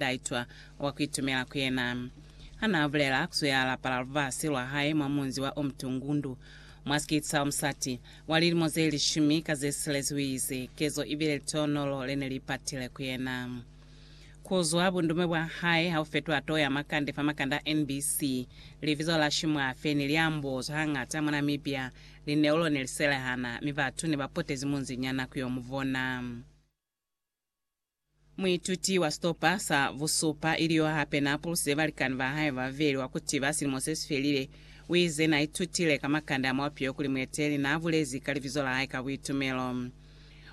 Taitwa wa ku itumela ku yena. Ha n'a bulela, ku zwe a lapala lubasi lwa hae mwa munzi wa Umtungundu, mwa sikiti sa musati wa lilimo ze lishumi ka ze silezi u ize, Kezo i bile litonolo le ne li patile ku yena. Ku zwa bundume bwa hae ha u fetwa too ya makande fa makande a NBC, libizo la Shimwafe ne li ambozwa hañata mwa Namibia. Lineulo ne li selehana, mi batu ne ba potezi munzi nyana ku yo mu bona. Muituti wa sitopa sa busupa, ili yo hape n'a puluse balikani ba hae ba babeli wa ku tiba silimo se si felile, u ize n'a itutile ka makande a muapi yo kuli mueteli n'a bulezi ka libizo la hae ka buitumelo.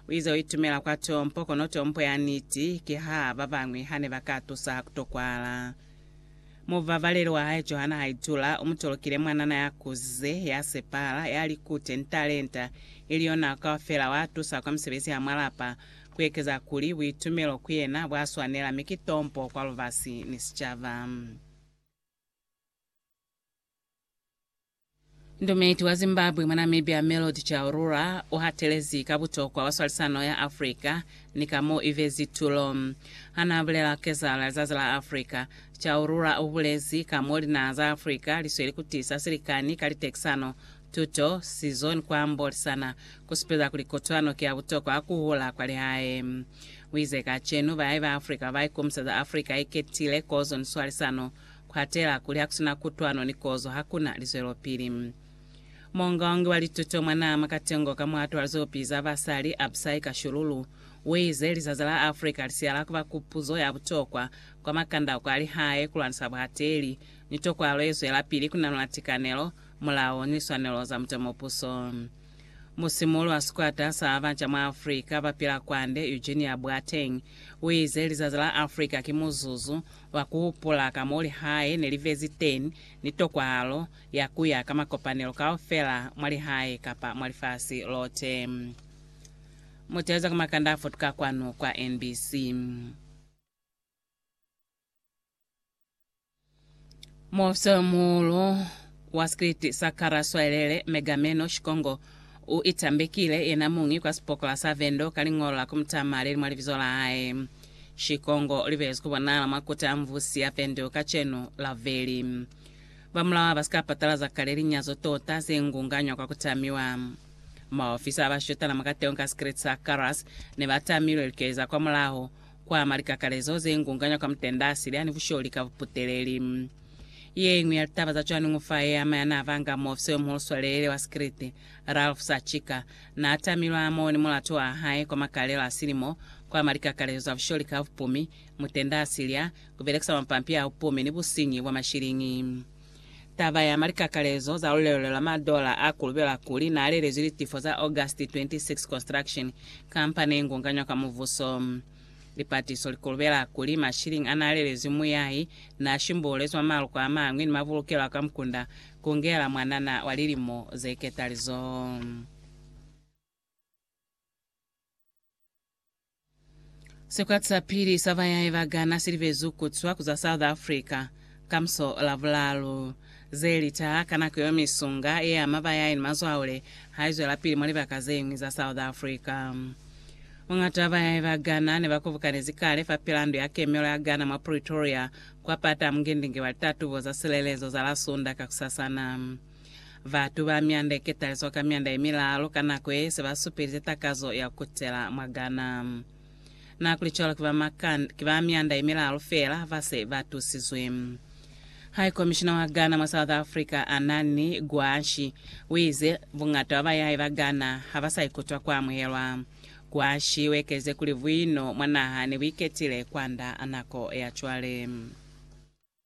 U ize u itumela kwa tompo, kono tompo ya niti ki ha ba bañwi ha ne ba ka tusa ha ku tokwala. Mubabaleli wa hae Johanna Haidula u mu tolokile mwanana ya kuzize, ya sepahala, ya likute ni talenta, ili yo nako kaufela wa tusa kwa misebezi ya mwa lapa, ku ekeza kuli buitumelo ku yena bwa swanela mi ki tompo kwa lubasi ni sicaba. Ndumeti wa Zimbabwe mwa Namibia Melody Chaurura u hatelezi ka butokwa bwa swalisano ya Africa ni ka mo i bezi tulo. Ha n'a bulela ka kezahala ya Lizazi la Africa, Chaurura u bulezi ka mo linaha za Africa li sweli ku tisa silikani ka litekisano, tuto, sizo ni ku ambolisana, ku supeza kuli kotwano ki ya butokwa ha ku hula kwa lihae. U ize, Kacenu, bayahi ba Africa ba ba ikomiseza Africa ye ketile, kozo ni swalisano. kwatela kuli hakusina kutwano ni kozo hakuna lizwelopili. Muongaongi wa lituto mwa naha mwa Katengo ka muhato wa lizopi za basali, Absai Kashululu, uize lizazi la Africa lisiya la kuba kupuzo ya butokwa kwa makandauko a lihae kulwanisa buhateli ni tokwalo yezwelapili kunanula tikanelo, mulao ni liswanelo za mutomopuso. Musimuli wa sikwata sa baca mwa Africa bapila kwande, Eugenia Boateng, uize lizazi la Africa ki muzuzu Lwa ku hupula ka mo lihae ne li vezi teñi, ni tokwahalo ya ku ya ka makopanelo kaufela mwa lihae kapa mwa lifasi lote. Mutaluza ka makanda a futuka kwanu kwa NBC. Muofisarimuhulu wa sikriti sa Kara Swalele, Megameno Shikongo, u itambekile yena muñi kwa sipokola sa Vendo ka liñolo la ku mu tama le li mwa libizo la hae. Shikongo u libelezwi ku bonahala mwa koti a Mvusi ya Vendo kacenu, Laveli. Ba mulao ha ba si ka patalaza kale linyazo tota ze ngunganywa kwa ku tamiwa. Maofisa a ba shutana mwa kateho ka sikriti sa Karas ne ba tamilwe likeeza kwamulaho Kwa ama likakalezo ze ngunganywa ka mutenda sili ani busholi ka buputeleli. Ye iñwi ya litaba za cwani ngo fa ye ama ya n'a vanga muofisa yo muhulu swalelele wa sikiliti, Ralph Sachika, n'a tamilwe a mone mulatu wa hae kwa makalelo a silimo. Kwa ama likakalezo za busholi ka bupumi, mutenda sili a ku belekisa mapampi a bupumi ni businyi bwa mashiliñi. Taba ya malikakalezo za lulelo lwa madola a kulubela kuli na lelezwi litifo za August 26 Construction Company ye ngunganywa ka muvuso. Lipatiso li kulubela kuli mashiliñi a na lelezwi muyahi na shimbuulezwi mwa maluko a mañwi ni mabulukelo a kwa mukunda kungela mwanana wa lilimo ze ketalizo. Sikwati sa pili sa bayahi ba Ghana si libezwi ku zwa ku za South Africa ka muso o Lavulalu. Ze litaha ka nako yeo misunga ye ama bayahi ni mazwaule ha i zwelapili mwa libaka ze ñwi za South Africa. Muñata wa bayahi ba Ghana ne ba kobukanezi kale fapilaa ndu ya kemelo ya Ghana mwa Pretoria kwa pata a mungindingi wa litatubo za silelezo za la Sunda kakusasana. Batu ba myanda ye ketaliswa ka myanda ye milalu ka nako ye se ba supelize takazo ya ku kutela mwa Ghana. Na ku li cwalo ki ba Makan, ki ba myanda ye milalu feela ba se ba tusizwe. High Commissioner wa Ghana mwa South Africa, Anani Gwashi, u ize, Buñata bwa bayahi ba Ghana ha ba sa ikutwa ku amuhelwa. Gwashi u ekelize kuli buino mwa naha ne bu iketile kwand'a nako ya cwale.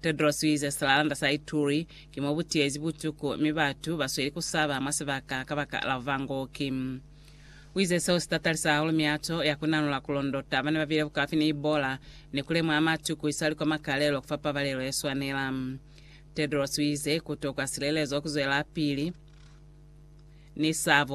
Tedros uize silalanda sa Ituri ki mo butiyezi butuku mi batu basweli kusaba mwa sibaka kabaka la buvangooki. Uize seo sitatalisa hahulu miato ya kunanula kulondota bana babile bukaufi ni Ebola ni kulemuha matu kuisali kwa makalelo kufa pabalelo yeswanela. Tedros uize kutokwa silelezo kuzwelapili ni sabo.